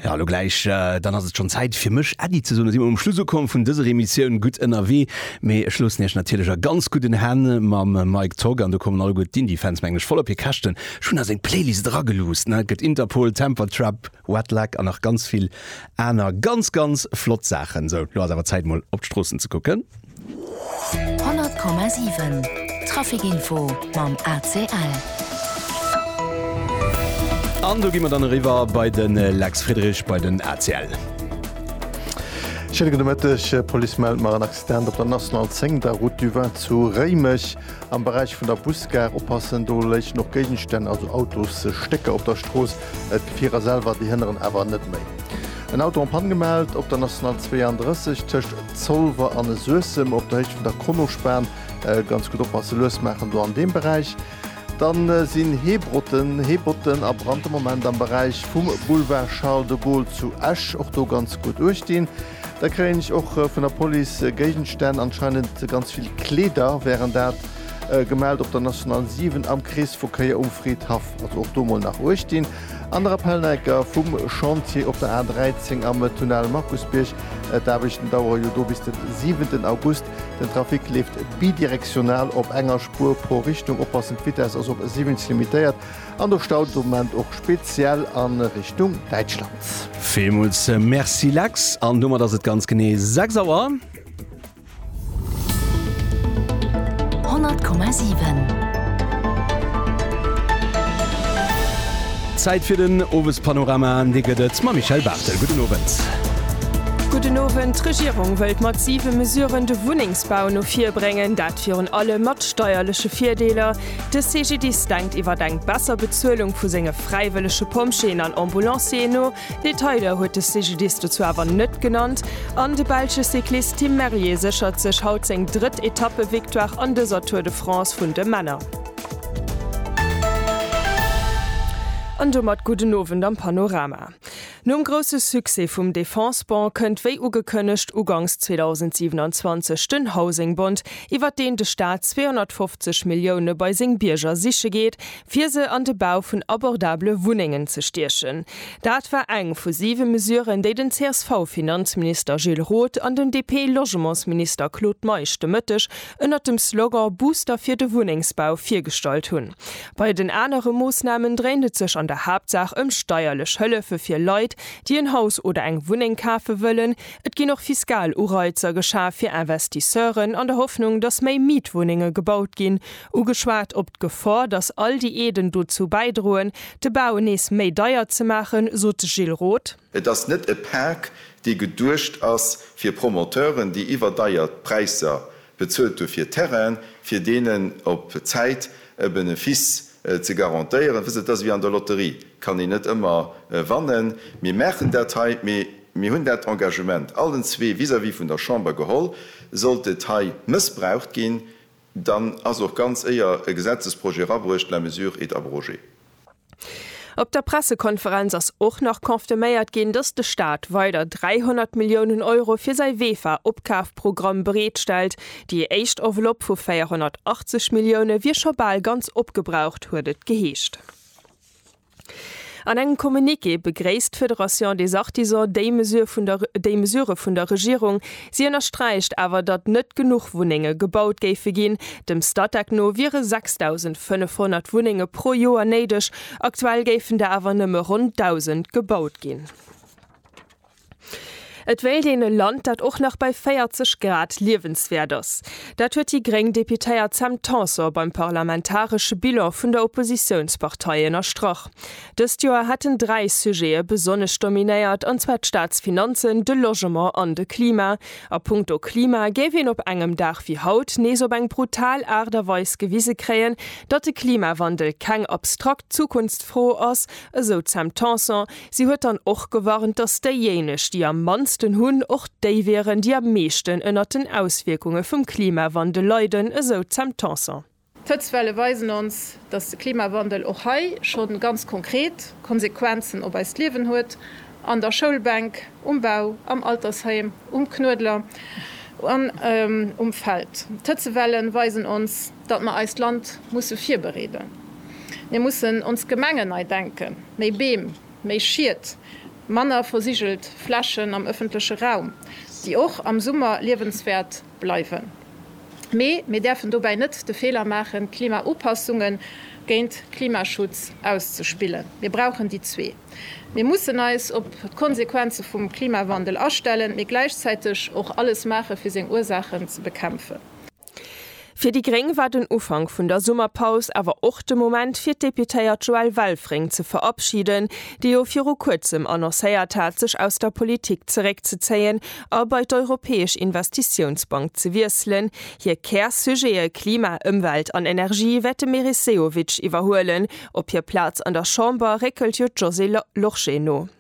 Ja, lo gläich, dann ass et schonn Zäit fir mech Äddi ze soen. Da si mer um Schluss ukomm vun dëser Emissioun Gutt ënnerwee. Mee ech loossen Iech natierlech a ganz gudden Hänn mam Mike Togg. An do kommen alleguer d'Indie-Fans, mengen ech, voll op hir Käschten. Ech hunn a seng Playlist erageluusst, ne? Et gëtt Interpol, Temper Trap, Wet Leg an nach ganz vill aner ganz, ganz flott Saachen. Sou, lo ass awer Zäit, mol op d'Stroossen ze kucken. 100,7 Traficinfo mam ACL. An do gi mer dann eriwwer bei de Lex Friedrich bei den ACL. Schéine gudde Mëtteg. D'Police mellt mar en Accident op der National 10, der Route du Vin zu Réimech. Am Beräich vun der Busgare oppassen, do léichen och Géigenstänn, also Autosstécker op der Strooss. D'Gefier ass selwer, déi hënneren awer net méi. En Auto en Panne gemellt op der National 32 tëscht Zolwer an Suessem op der Héicht vun der Kronospan. Ganz gutt oppasse lues maachen do an deem Beräich. Dann sinn Heebrotten, Heebotten a Brand de Moment am Beräich vum Boulevard Charles de Gaulle zu Esch. Och do ganz gutt uecht dinn. Da kréien ech och vun der Police Géigenstänn, anscheinend ganz vill Kleeder wären dat, gemellt op der National 7 am Kreesverkéier um Fridhaff. Also och do mol nach uecht dinn. An der Appelneiker vum Chantier op der A13 am Tunnel Markusbierg. D'Aarbechten dauere jo do bis den siwenten August. Den Trafic leeft bidirektional op enger Spuer pro Richtung. Oppassen, d'Vitess ass op 70 limitéiert an do staut et de Moment och speziell a Richtung Däitschland. Villmools Merci Lex, an domat ass et ganz genee 6 Auer. Zäit fir den Owespanorama an dee gëtt et mam Michèle Barthel. Gudden Owend. Gudden Owend. D'Regierung wëllt mat siwe Mesuren de Wunnengsbau no vir bréngen, dat virun allem mat steierleche Virdeeler. De CGDIS denkt iwwer eng besser Bezuelung vu senge fräiwëllege Pompjeeën an Ambulancieren no. Detailer huet de CGDIS dozou awer net genannt an de belsche Cyclist Tim Merlier séchert sech haut seng drëtt Etappevictoire an dëser Tour de France vun de Männer. An domat gudden Owend am Panorama. Nom grousse Succès vum Defense-Bond kënnt wéi ugekënnegt ugangs 2027 den Housing-Bond, iwwert deen de Staat 250 Millioune bei seng Bierger siche geet, fir se an de Bau vun abordabele Wunnengen ze stiechen. Dat war eng vu siwe Mesuren, déi den CSV-Finanzminister Gilles Roth an den DP-Logementsminister Claude Meisch de Mëtteg ënnert dem Slogan Booster fir de Wunnengsbau virgestallt hunn. Bei den anere Moossnamen dréint et sech an der Haaptsaach ëm steierlech Hëllefe fir Leit, déi en Haus oder eng Wunneng kafe wëllen. Et ginn och fiskal Ureizer geschaf fir Investisseuren, an der Hoffnung, datt méi Mietwunnenge gebaut ginn. Ugeschwat op d'Gefor, datt all déi Aiden dozou bäidroen, de Bau nees méi deier ze maachen, sot de Gilles Roth. Et ass net e Pak, dee geduecht ass fir Promoteuren, déi iwwerdeiert Präisser bezuelt hu fir Terrainen, fir deenen op Zäit e Benefice ze garantéieren. Wësst Der, et ass ewéi an der Lotterie, kann een net ëmmer wannen. Mir maachen dat hei, mee mir hunn dat Engagement allen zwee vis-à-vis vun der Chamber geholl. Sollt et hei mëssbraucht ginn, Dann ass och ganz éier e Gesetzesprojet erabruecht, la mesure est abrogée. Op der Pressekonferenz ass och nach confirméiert ginn, datt de Staat weider 300 Milliounen Euro fir säi Vefa-Opkafprogramm bereetstellt. Déi éischt Enveloppe vu 480 Millioune wier scho bal ganz opgebraucht, huet et geheescht. An engem Communiqué begréisst d'Fédération des Artisans déi Mesure vun der déi Mesurë vun der Regierung. Si ënnersträicht awer, datt net genuch Wunnenge gebaut géife ginn. Dem Statec no wiere 6.500 Wunnenge pro Joer néideg, aktuell géifen der awer nëmme ronn 1.000 gebaut ginn. Et wéilt een e Land, dat och nach bei 40 Grad liewenswäert ass. Dat huet déi gréng Deputéiert Sam Tanson beim parlamentaresche Bilan vun der Oppositiounspartei ënnerstrach. Dëst Joer hätten dräi Sujete besonnesch dominéiert, an zwar d'Staatsfinanzen, de Logement an de Klima. A punkto Klima géif een op engem Dag wéi haut nees op eng brutal Aart a Weis gewise kréien, datt de Klimawandel keng abstrakt Zukunftsfro ass, esou d'Sam Tanson, Si huet dann och gewarnt, datt déijéineg, déi am mannsten hunn, och déi wieren, déi am meeschten ënnert den Auswierkunge vum Klimawandel leiden, esou d'Sam Tanson. D'Hëtztwelle weisen ons, datt de Klimawandel och hei scho ganz konkret Konsequenzen op eist Liewen huet, an der Schoulbänk, um Bau, am Altersheim, um Knuedler an um Feld. D'Hëtzewellen weisen ons, datt mer eist Land musse virbereeden. Mir mussen ons Gemengen nei denken, méi Beem, méi Schied, manner versigelt Flächen am ëffentleche Raum, déi och am Summer liewenswäert bleiwen. Mee mir däerfen dobäi net de Feeler maachen, Klimaupassunge géint Klimaschutz auszespillen. Mir brauchen déi zwee. Mir mussen eis op d'Konsequenze vum Klimawandel astellen, mee gläichzäiteg och alles maache fir seng Ursaachen ze bekämpfen. Fir déi gréng war den Ufank vun der Summerpaus awer och de Moment fir d'Deputéiert Joelle Welfring ze verabschiden, déi jo viru kuerzem annoncéiert hat sech aus der Politik zeréckzezéien a bei d'Europäesch Investitiounsbank ze wiesselen. Hir Kär-Sujete Klima, Ëmwelt an Energie wäert de Meris Sehovic iwwerhuelen. Op hir Plaz an der Chamber réckelt jo d'Josée Lorsché no.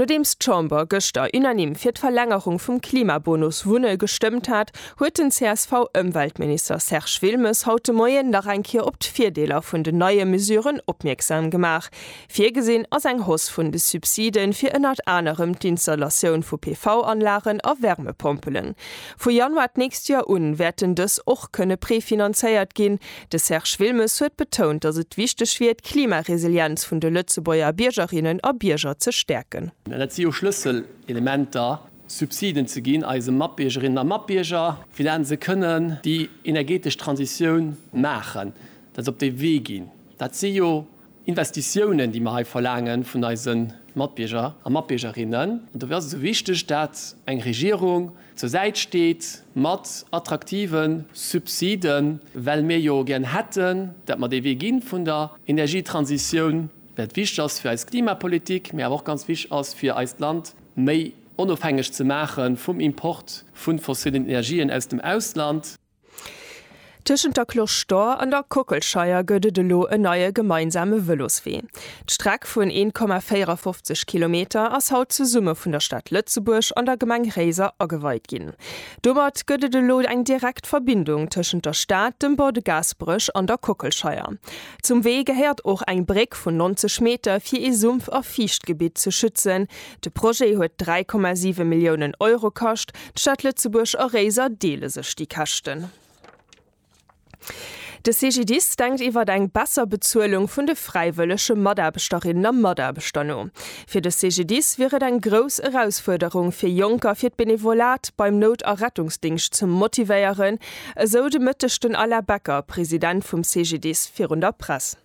Nodeems d'Chamber gëschter unanime fir d'Verlängerung vum Klimabonus Wunne gestëmmt hat, huet den CSV-Ëmweltminister Serge Wilmes haut de Moien nach eng Kéier op d'Virdeeler vun den neie Mesuren opmierksam gemaach. Virgesinn ass eng Hausse vun de Subside fir ënnert anerem d'Installatioun vu PV-Anlagen a Wärmepompelen. Vu Januar d'nächst Joer un wäerten dës och kënne prefinanzéiert ginn, De Serge Wilmes huet betount, datt et wichteg wier, d'Klimaresilienz vun de Lëtzebuerger Biergerinnen a Bierger ze stäerken. An et si jo Schlësselelementer, Subsiden ze ginn eise Matbiergerinnen a Matbierger, fir dat se kënnen déi energetesch Transitioun maachen, dat se op dee Wee ginn. Dat si jo. Investitiounen, déi mer hei verlaange vun eise Matbierger a Matbiergerinnen. An dofir ass et esou wichteg, dat eng Regierung zur Säit steet mat attraktive Subsiden, well mir jo gären hätten, dat mer dee Wee gi vun der Energietransitioun, wat wichteg ass fir eis Klimapolitik, mä awer och ganz wichteg ass fir eist Land méi onofhängeg ze maache vum Import vu fossillen Energien aus dem Ausland. Tëschent der Cloche d'Or an der Kockelscheier gëtt et elo en neie gemeinsame Vëloswee. D'Streck vun 1,54 Kilometer ass haut zesumme vun der Stad Lëtzebuerg an der Gemeng Réiser ageweit ginn. Domat gëtt et elo eng direkt Verbindung tëschent der Stad, dem Bord de Gaasperech an der Kockelscheier. Zum Wee gehéiert och eng Bréck vun 90 Meter, fir ee Sumpf a Fiichtgebitt ze schützen, De Projet huet 3,7 Milliounen Euro kascht. D'Stad Lëtzebuerg a Réiser deele sech déi Käschten. De CGDIS denkt iwwer eng besser Bezuelung vun de fräiwëllege Mataarbechterinnen a Mataarbechter no. Fir de CGDIS wier et eng grouss Erausfuerderung, fir Jonker fir d'Benevolat beim Nout a Rettungsdingscht ze motivéieren, esou de Mëtteg den Alain Becker, President vum CGDIS, virun der Press.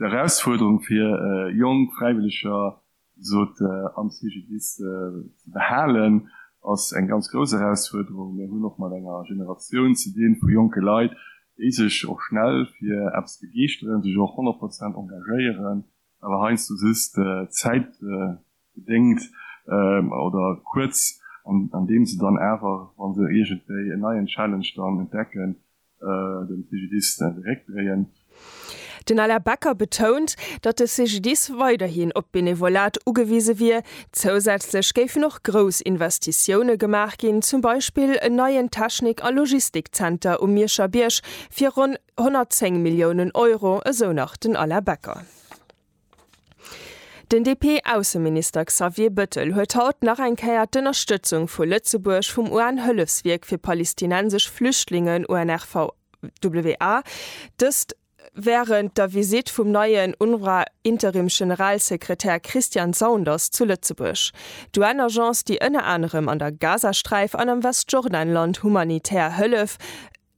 D'Erausfuerderung fir jonk Fräiwëlleger Sot am CGDIS ze behalen ass eng ganz grouss Erausfuerderung. Mir hunn och mat enger Generatioun ze dinn vu jonke Leit, déi sech och schnell fir eppes begeeschteren, sech och 100 Prozent engagéieren, awer heiansdo just zäitbedéngt oder kuerz, an deem se dann awer, wa se iergendwéi en neien Challenge dann entdecken, den CGDIS zeréckdréien. Den Alain Becker betount, datt de CGDIS weiderhin op d'Benevolat ugewise wier. Zousätzlech géifen och grouss Investitioune gemaach ginn, zum Beispill en neien Technik a Logistikzenter um Mierscher Bierg fir ronn 110 Milliounen Euro, esou nach den Alain Becker. Den DP-Ausseminister Xavier Bëttel huet haut nach eng Kéier d'Ënnerstëtzung vu Lëtzebuerg vum UN-Hëllefswierk fir palestinensesch Flüchtlingen, UNRWA, dëst wärend der Visitt vum neien UNRWA-Interimgeneralsekretär Christian Saunders zu Lëtzebuerg. D'UN-Agence, déi ënner anerem an der Gazasträif an am Westjordanland humanitär Hëllef,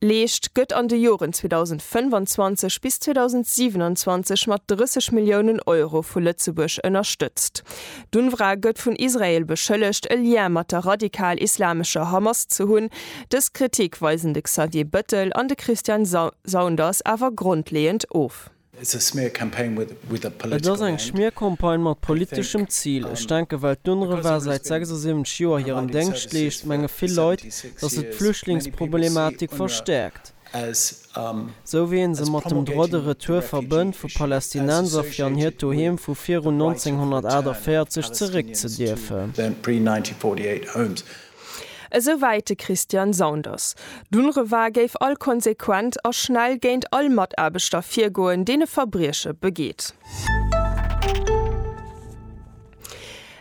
Leescht, gëtt an de Joren 2025 bis 2027 mat 30 Milliounen Euro vu Lëtzebuerg ënnerstëtzt. D'UNRWA gëtt vun Israel beschëllegt, e Lien mat der radikal-islamescher Hamas ze hunn. Dës Kritik weisen de Xavier Bëttel an de Christian Saunders awer grondleeënd of. Et ass eng Schmiercampagne mat politeschem Zil. Ech denken, well d'UNRWA säit 76 Joer hiren Déngscht leescht, menge vill Leit, datt et d'Flüchtlingsproblematik verstäerkt, esou wéi ee se mat dem Droit de retour verbënnt, vu Palästinenser fir an hiert Doheem vu virun 1948 zeréckzedierfen. Esou wäit de Christian Saunders. D'UNRWA géif all konsequent a schnell géint all Mataarbechter virgoen, deen e Verbrieche begeet.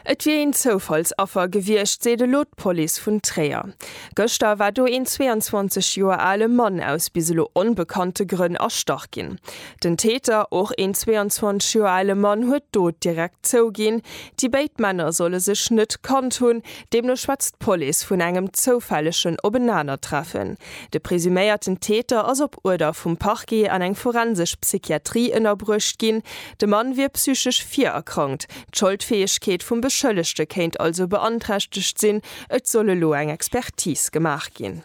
Et wier een Zoufallsaffer gewiescht, seet elo d'Police vun Tréier. Gëschter war do een 22 Joer ale Mann aus bis elo onbekannte Grënn erstach ginn. Den Täter, och een 22 Joer ale Mann, huet d'Dot direkt zouginn. Déi béid Männer solle sech net kannt hunn. Deemno schwätzt d'Police vun engem zoufällegen Openanertreffen. De presuméierten Täter ass op Uerder vum Parquet an eng forensesch Psychiatrie ënnerbruecht ginn. De Mann wier psychesch virerkrankt, d'Scholdfäegkeet vum Beschëllegte kéint also beanträchtegt sinn. Et soll elo eng Expertise gemaach ginn.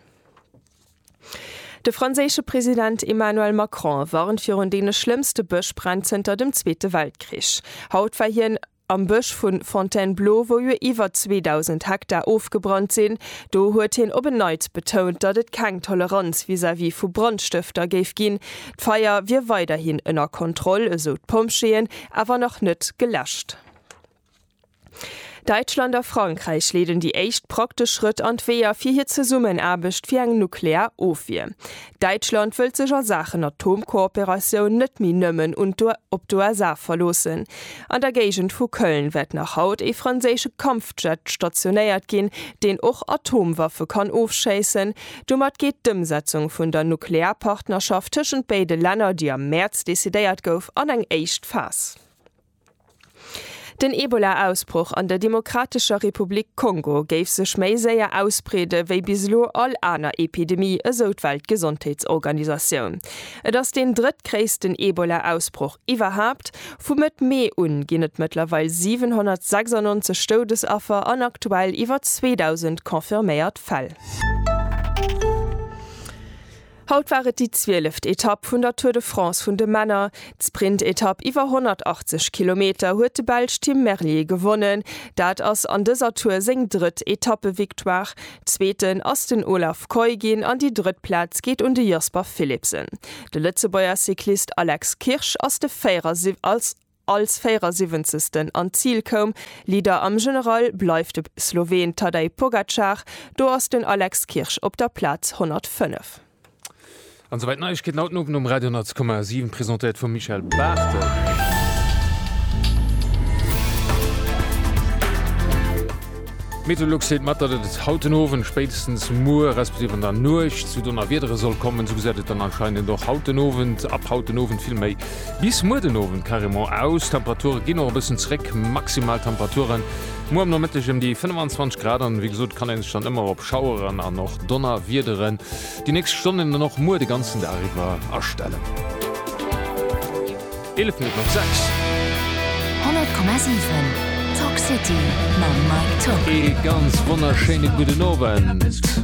De franséische President Emmanuel Macron warnt virun deene schlëmmste Bëschbränn zënter dem Zweete Weltkrich. Haut war hien. Am Bësch vu Fontainebleau, wou jo iwwer 2.000 Hektar ofgebrannt sinn, do huet hien op en Neits betount, datt et keng Toleranz vis-à-vis vu Brandstëfter géif ginn. D'Feier wier weiderhin ënner Kontroll, esou d'Pompjeeën, awer nach net geläscht. Däitschland a Frankräich leeden déi éischt praktesch Schrëtt an d'Weeër fir hir Zesummenaarbecht fir eng nuklear Ofwier. Däitschland wëllt sech a Saachen Atomkooperatioun net méi nëmmen un d'UE op d'USA verloossen. An der Géigend vu Köln wäert nach haut ee franséische Kampfjet stationéiert ginn, deen och Atomwaffe kann ofschéissen. Domat geet d'Ëmsetzung vun der Nuklearpartnerschaft tëschent béide Länner, déi am Mäerz decidéiert gouf, an eng éischt Phas. Den Ebola-Ausbroch an der Demokratescher Republik Kongo géif sech méi séier ausbreede wéi bis elo all aner Epidemie, esou d'Weltgesondheetsorganisatioun. Et ass deen drëttgréissten Ebola-Ausbroch iwwerhaapt. Vu Mëtt Mee un ginn et mëttlerweil 796 Doudesaffer an aktuell iwwer 2.000 confirméiert Fäll. Haut war et déi zwieleft Etapp vun der Tour de France vun de Männer. D'Sprintetapp iwwer 180 Kilometer huet de Belsch Tim Merlier gewonnen. Dat ass an dëser Tour seng drëtt Etappevictoire. Zweeten ass den Olav Kooij ginn an déi drëtt Plaz geet un de Jasper Philipsen. De Lëtzebuerger Cyclist Alex Kirsch ass de 74. als 74. an d'Zil koum. Leader am General bleift de Sloween Tadej Pogacar, do ass den Alex Kirsch op der Plaz 105. An souwäit d'Neiegkeeten haut den Owend um Radio 100,7, presentéiert vum Michel Barthel. D'Meteolux seet mat, datt et haut den Owend, spéitstens muer respektiv an der Nuecht zu Donnerwiedere soll kommen. Esou gesäit et dann anscheinend och haut den Owend, ab haut den Owend vill méi. Bis muer den Owend carrément aus, d'Temperature ginn och e bëssen zréck, maximal Temperature muer am Nomëtteg ëm déi 25 Grad an wéi gesot kann ee sech dann ëmmer op Schaueren an och Donnerwiedere déi nächst Stonnen an och muer de ganzen Dag iwwer astellen. 11 Minutten op 6. 100,7 Talk City mam Mike Top. Ee ganz wonnerschéine gudden Owend.